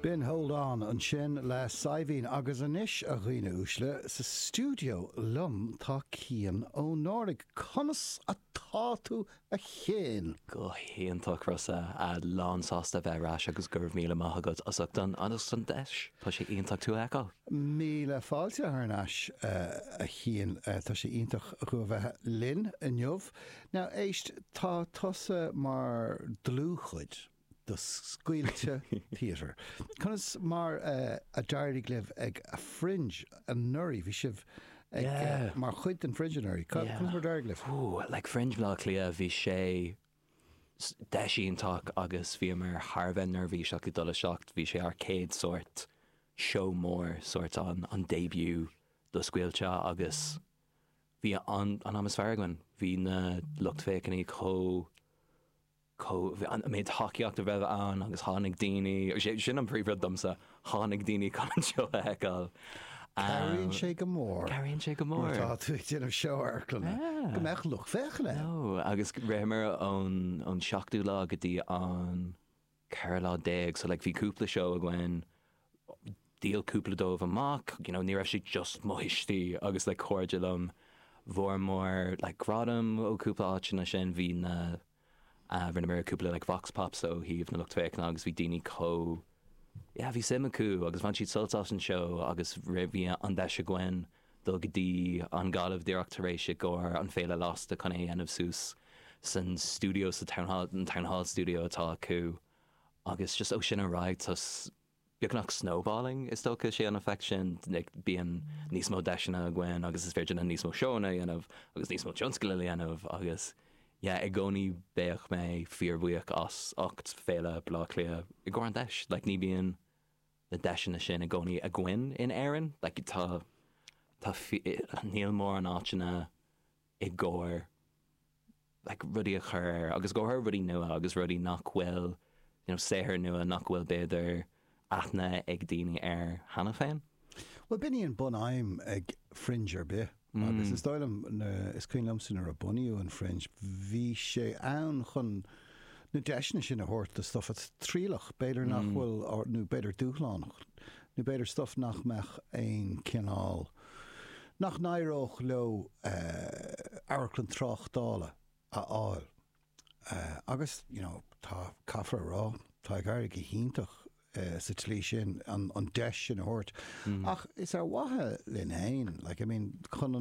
Binn Holdáin ansin le Saidhbhín agus anois, a dhaoine uaisle, sa stiúideo liom tá Cian Ó Náirigh. Conas atá tú a Chiain? Go hiontach Rossa, lán sásta a bheith ar ais agus go raibh míle maith agat as ucht an deis, tá sé iontach tú a fheiceáil. Míle fáilte thar n-ais a Chiain, tá sé iontach thú a bheith linn inniu. Now éist, tá tusa mar dlúthchuid. do Scaoilte Theatre. Conas mar a d'éirigh libh ag Fringe anuraidh? Bhí sibh ag, mar chuid den Fringe anuraidh. Conas mar a d'éirigh libh? Like Fringe Bhaile Átha Cliath, bhí sé deis iontach agus bhíomar thar a bheith neirbhíseach ag dul isteach. Bhí sé ár chéad sórt seó mór, sórt an an début do Scaoilte agus bhí an t-am is fearr againn. Bhí na lucht féachana chomh. chomh an méid tacaíochta a raibh ann agus tháinig daoine, sin an príomhrud domsa, tháinig daoine chun an seó a fheiceáil. Cabhraíonn sé go mór. Cabhraíonn sé go mór. Nuair atá tú ag déanamh seó amharclanna go mbeadh lucht féachana ann. Nó agus ritheamar ón seachtú lá go dtí an ceathrú lá déag, so like bhí cúpla seó againn, dhíol cúpla dóibh amach, you know, ní raibh siad just mo thuistí agus like cairde liom, fuaireamar like gradaim ó cúpla áiteanna sin, bhí na. Rinneamar cúpla like vox pops ó thaobh na lucht féachana agus bhí daoine chomh yeah bhí suim acu agus bhain siad sult as an seó agus ansin bhí an deis againn dul go dtí an Ghaillimh díreach tar éis i gcomhair an Féile Lasta chun é a dhéanamh suas san stiúideo sa town hall an town hall studio atá acu agus just ó sin ar aghaidh just beagnach snowballing is dócha, sé an effect sin, bíonn níos mó deiseanna againn agus is féidir linn níos mó seóanna a dhéanamh agus níos mó tionscadail a dhéanamh agus yeah i gcónaí beidh mé fíor bhuíoch as ucht Féile Baile Átha Cliath i gcomhair an deis like ní bíonn na deiseanna sin i gcónaí againn in Éirinn like tá tá níl mórán áiteanna i gcomhair like rudaí a chur ar agus i gcomhair rudaí nua agus rudaí nach bhfuil you know saothair nua nach bhfuil b'fhéidir aithne ag daoine air cheana féin. Bhuel b'in í an bunaidhm ag Fringe ar bith agus is dóigh liom na is cuimhin liomsa nuair a bunaíodh an Fringe bhí sé ann chun na deiseanna sin a thabhairt do stuff atá trialach b'fhéidir nach bhfuil nó b'fhéidir dúshlánach nó b'fhéidir stuff nach mbeadh aon cineál nach n-éireodh leo amharclann tráchtála a fháil agus you know tá, caithfear a rá, tá ag éirí go hiontach sa tslí sin an deis sin a thabhairt ach is ar mhaithe linn féin like I mean chun an.